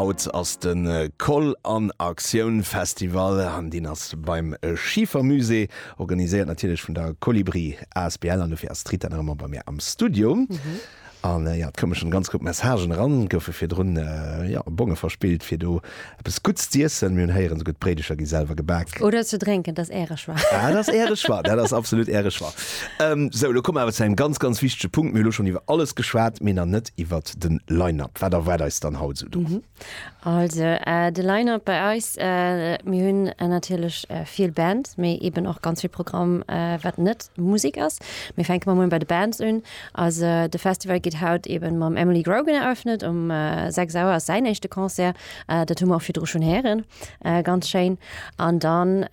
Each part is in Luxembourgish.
Haut ass de Koll an Aktioun Festival an deen ass beim Schifer Musée, organiséiert natierlech vun der Kolibri asbl an dofir ass d'Rita nach ëmmer bei mir am Studio. An jo, et koume schonn e ganz Grupp Messagen eran, goufe virdrun jo Bonge verspillt fir do Eppes Gutts z'iessen, mir hunn héieren esouguer d'Bréidecher gi selwer gebak. Oder ze drénken, dat ass Äre Choix. Dat ass Äre Choix, dat ass absolut Äre Choix. Sou, elo komme mer awer zu engem ganz, ganz wichtege Punkt. Mir hu lo schonn iwwer alles geschwat, mee nach net iwwer de Line-Up. Wat erwaart eis dann haut esou do? Also, de Line-Up bei eis, mir hunn natierlech vill Bands, mee eeben och ganz vill Programm, wat net Musek ass. Mir fänke mol bei de Bands un. Also de Festival gëtt haut eben mam Emily Grogan eröffnet, um 6 Auer ass säin éischte Concert, dat hu mer och virdru schonn héieren, ganz schéin. An dann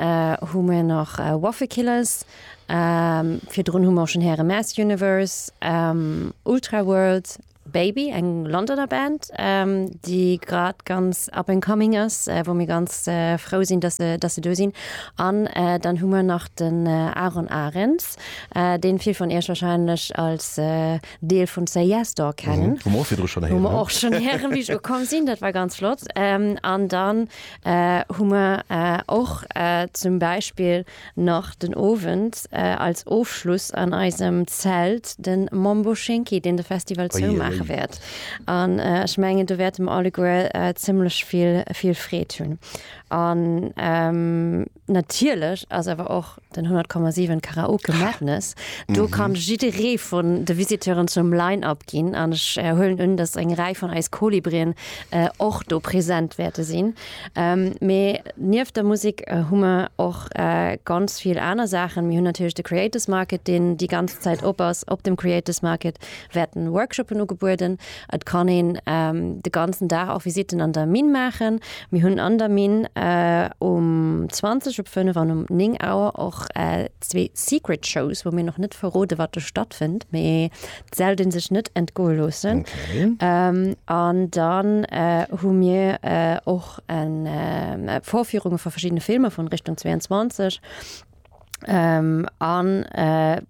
hu mir nach Waffle Killers, virdrun hu mer och schonn héiere Mass Universe, Ultraworld, Baby, eng Londoner Band, déi grad ganz up and coming ass, wou mir ganz frou sinn, dass se do sinn. An dann hu mer nach den Aaron Arenz. Podcast, deen vill vun iech wahrscheinlech als Deel vun CIS Store kennen. Hu mer och virdru schonn héieren. Hu mer och schonn héieren, wéi ech ukomm sinn. Dat war ganz flott. An dann hu mer och zum Beispill nach den Owend als Ofschluss an eisem Zelt de Mambo Schinki, deen de Festival zoumaache wäert. An ech mengen, do wäerte mer alleguer zimmlech vill Freed hunn. An Natierlech ass awer och den 100,7 Karaoke Madness. Do kann jidderee vun de Visiteuren zum Line-Up ginn an ech huelen un, dass eng Rei vun eis Kolibrien och do present wäerte sinn. Mee nieft der Musek hu mer och ganz vill aner Saachen. Mir hunn natierlech de Creators Market, deen déi ganz Zäit op ass. Op dem Creators Market wäerten Workshoppen ugebueden, Et kann een de ganzen Dag och Visitten an der Minn maachen. Mir hunn an der Minn um 20, op 5 an um 9 Auer och zwee Secret Shows, wou mir nach net verrode wat do stattfënnt, mee et sellt ee sech net entgoe loossen. An dann hu mir och Vorführunge vu verschiddene Filmer vun Richtung 22. An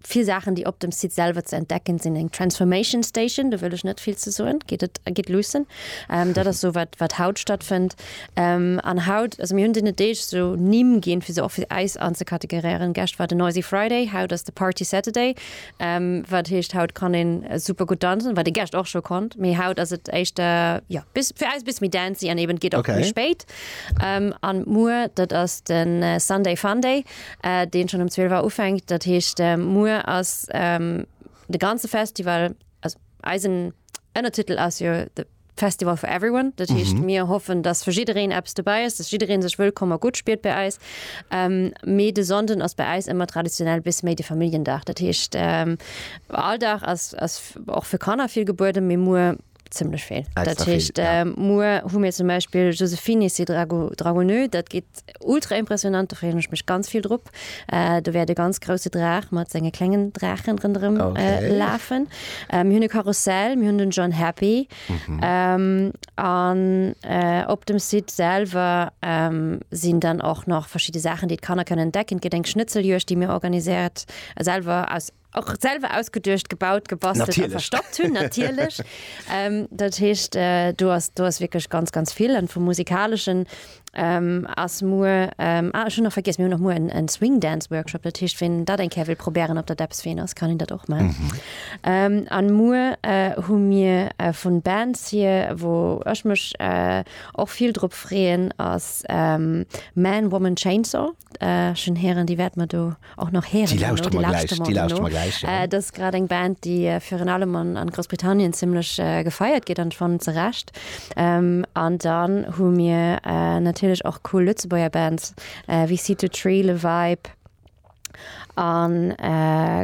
vill Saachen, déi op dem Site selwer ze entdecken sinn, eng Transformation Station, do wëll ech net vill ze soen, gitt et, gitt luussen. Dat ass esou wat wat haut stattfënnt. An haut, also mir hunn deene Deeg esou Nimm ginn, fir se och fir eis anzekategoréieren. Gestcht war den Noisy Friday, haut ass de Party Saturday, wat heescht haut kann een super gutt danzen, wat ee gestcht och scho konnt, mee haut ass et éischter, jo, bis, fir eis e bësse méi dancy an eben et geet och méi spéit. An muer, dat ass de Sunday Funday, deen schonn um 12 Auer ufänkt. Dat heescht, muer ass de ganze Festival, also eisen Ënnertitel ass jo The Festival for Everyone. Dat heescht, mir hoffen, dass fir jiddereen eppes dobäi ass, dass jidderee sech wëllkomm a gutt spiert bei eis. Mee de Sonnden ass bei eis ëmmer traditionell e bësse méi de Familljendag. Dat heescht, all Dag ass och fir Kanner vill gebueden, mee muer ziemlich viel dat hecht äh, muer hu mir zum Beispiel Josephine si Drago Dragonö dat geht ultra impressionant da freech mich ganz viel drop äh, du werde ganz große Drach mat senge klengen Drachen rundrem äh, okay. äh, lafen ähm, hunne Karussell mir hun den John Happy mhm. ähm, an äh, op dem Site selber ähm, sind dann auch noch verschiedene Sachen die kann er können decken gedenk Schnitzeljurch die mir organisiert äh, selber aus och selwer ausgeduecht, gebaut, gebastelt, natierlech. a verstoppt hunn, natierlech. ähm, dat heescht, äh, du hast, du hast wirklich ganz, ganz vill an vum musikaleschen ähm, ass muer ähm, ah, schon noch vergis mir noch muer en, en Swing Dance Workshop dat heescht wenn dat eng Kä will probieren op der Depps wen ass kann hin dat och mal mhm. ähm, an muer äh, hu mir äh, vun Bands hier wo ech mech äh, och viel drop freeen ass ähm, Man woman Chainsaw Schön Hären, déi wäerte mer do och nach héieren. Déi lauschteren mer gläich, déi lauschteren mer gläich, jo. Dat ass grad eng Band, déi virun allem an Groussbritannien zimlech gefeiert gëtt, an ech fannen ze Recht. An dann hu mir natierlech och cool Lëtzebuerger Bands wéi Seed To Tree, Le Vibe, an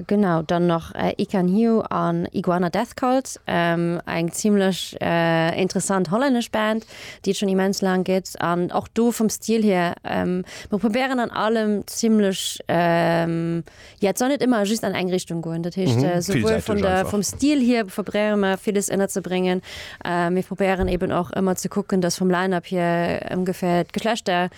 genau, dann nach Ican Hiu an Iguana Death Cult, eng zimlech interessant hollännesch Band. déi et schonn immens laang gëtt, an och do vum Stil hier, mer probéieren an allem zimlech, jo et soll net ëmmer just an eng Richtung goen, dat heescht souwuel vun der, vum Stil hier probéiere mer villes ënnerzebréngen, mee probéieren eeben och ëmmer ze kucken, datt vum Line-up hier ongeféier d'Geschlechter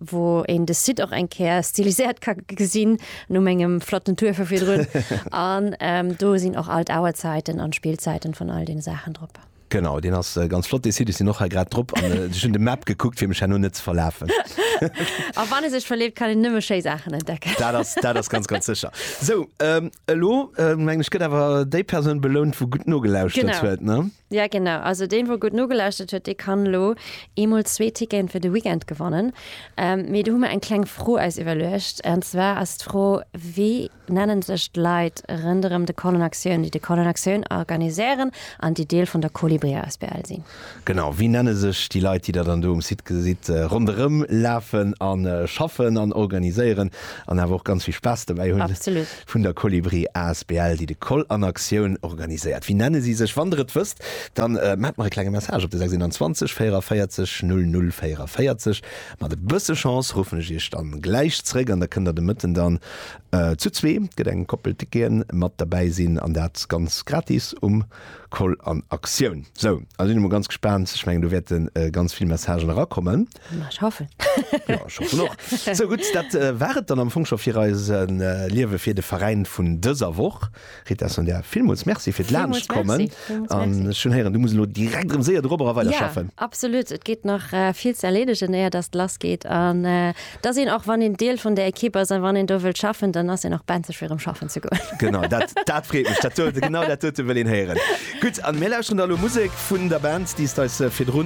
wou een de Site och eng Käer stiliséiert ka gesinn, no mengem flotten Tour vu virdrun. An ähm, do sinn och all d'Auerzäiten an d'Spillzäiten vun all deene Saachen drop. Genau, deen ass äh, ganz flott dee Site. Ech sinn och hei grad drop an äh, ech hunn de Map gekuckt, fir mech herno net ze verlafen. A wann ee sech verleeft, kann een nëmme schéi Saachen entdecken. Dat ass, dat ass ganz, ganz sécher. So, ähm, elo äh, meng ech, gëtt awer déi Persoun belount, wou gutt nogelauschtert Genau. huet, ne? Ja genau, also deen wou gutt nogelauschtert huet, dee kann elo eemol zwee Ticketen fir de Weekend gewannen. Mee do hu mer eng kleng Fro eis iwwerluecht, an zwar ass d'Fro, wéi nennen sech d'Leit rënderëm de Colin Actioun, déi de Colin Actioun organiséieren an déi Deel vun der Kolibri asbl sinn? Genau, wéi nenne sech déi Leit, déi der dann do um Site gesitt ronderëm lafen a schaffen an organiséieren an awer och ganz vill Spaass dobäi hunn? Absolut. Vun der Kolibri asbl, déi de Koll an Aktioun organiséiert. Wéi nenne si sech? Wann der et wësst, da maacht mer e klenge Message op de 621 44 00 44. Mat e bësse Chance ruffen ech iech da gläich zréck an da kënnt der de Mëtten dann zu zwee, et gëtt eng Koppel Tickete, mat derbäi sinn an dat ganz gratis um Koll an Aktioun. Sou, elo sinn ech mol ganz gespaant, ech mengen do wäerte ganz vill Messagen erakommen. Ech hoffen. Jo, ech hoffen och. Sou gutt, dat war et dann am Fong scho fir eise Liewe fir de Veräin vun dëser Woch. Rita Sonja, villmools Merci fir d'Laanschtkommen. An ech hunn héieren, du muss elo direkt erëm séier dorobber a weiderschaffen. Jo, absolut. Et geet nach vill ze erleedegen, éier datt et lass geet. An et ass een, och wann een Deel vun der Ekipp ass, a wann een do wëllt schaffen, dann ass een och benzeg fir erëm schaffen ze goen. Genau, dat freet mech. Dat huet e, genau dat huet e wëllen héieren. Gutt, a mir lauschteren da elo Musek. Vun der Band, déi s d'eis virdru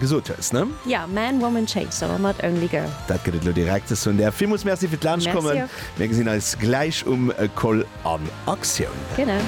gesot hues, ne? Jo, Man, Woman, Chainsaw mat Only Girl. Dat gëtt et elo direkt. Ech soen där villmools Merci fir d'Laanschtkommen. Mir gesinn eis gläich um Koll an Aktioun. Genau.